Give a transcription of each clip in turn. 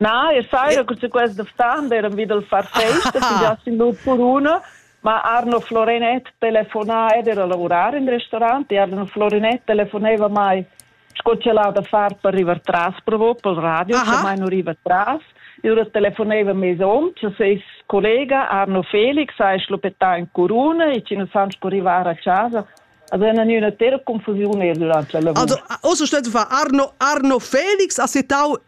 Na, e saira cun quest d'ftan d'eran vi dal far festa fingià sin l'ut per una, ma Arno Florenet telefonà ed era lavurar in restaurant e Arno Florenet telefoneva mai sco ch'el ha da far per rivar tras provo pel radio, Aha. sche mai nu riva tras. Ora telefoneva mes hom, cha seis collega Arno Felix ha schlupettà in curuna e chi nu san sco rivar a chasa Alltså en en üna tera confusiun er durante la lavur. Also, also stett war Arno Arno Felix a setau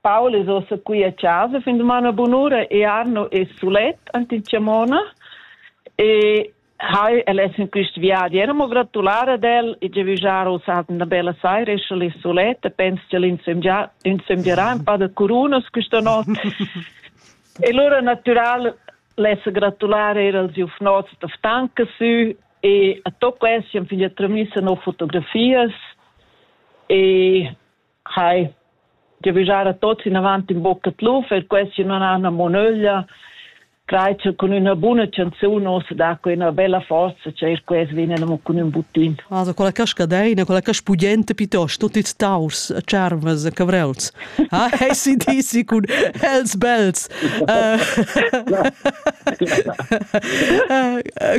Paul es ossa qui a chasa fin dumana bunura e Arno es sulet ant in chamona e hai el es in quist viadi. Era mo gratular ad el e ge vijar us hat una bella saira e sche li suletta pens che l'insemgià insemgierà un pa da curunas questa not. e lura natural lessa gratular er als jufnots da Ftanka sü e a tocco essi an figlia tramissa no fotografias e Hai, giavischar a tots inavant in bocca tluf, er questi non hanno mo nöglia, crei che con una buona canzone ossa dà quella bella forza che er questi vienen mo con un buttin. Also quella cascadeina, quella caspudenta piuttosto, tutti taurs, charmas, cavreuls. Ah, hey si disi cun els bels.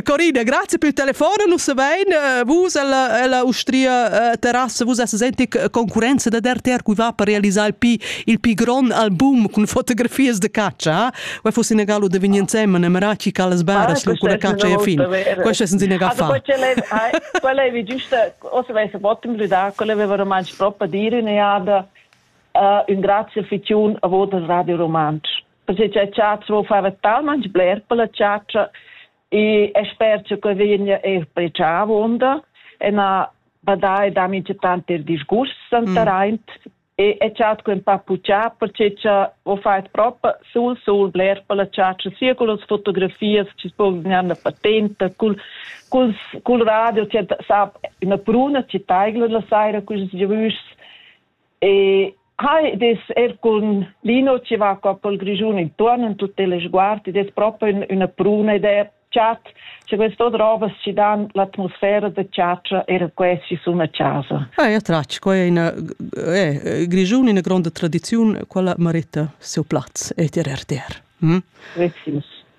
Corina, grazie per il telefono, non so bene, vus alla Austria terrasse, vus senti concurenza da RTR qui va per realizzare il più, il più grande album con fotografies de caccia, vai fosse in galo de vigni insieme, ne meraci calas baras, lo con caccia e fin, questo è senza ne fa. Quella è giusta, o se vai se potem ridare, quella aveva romanci proprio dire in jada, Ün grazia fitiun a vot al Radio Rumantsch. Perché c'è chat vo fava talmanch bler per la chatscha e e sper che que vegna er precià avonda e na badai da mi tanti disgust santaraint e e chat quem pa puccià perché cha vo fat propa sul sul bler per la chatscha sia con las fotografias che po gnanna patenta cul cul cul radio che sap una bruna che taigla la saira cus giavüs E hai des er cun Lino che va qua pel Grischun intuorn in tutte le sguardi des proprio in una pruna ed è chat che questo drobas ci dan l'atmosfera da chaccia era questi su una casa. Ah, è tratg, qua è una eh, Grischun una grande tradizione quella merita seu plaz e ter RTR. Hm? Richtig.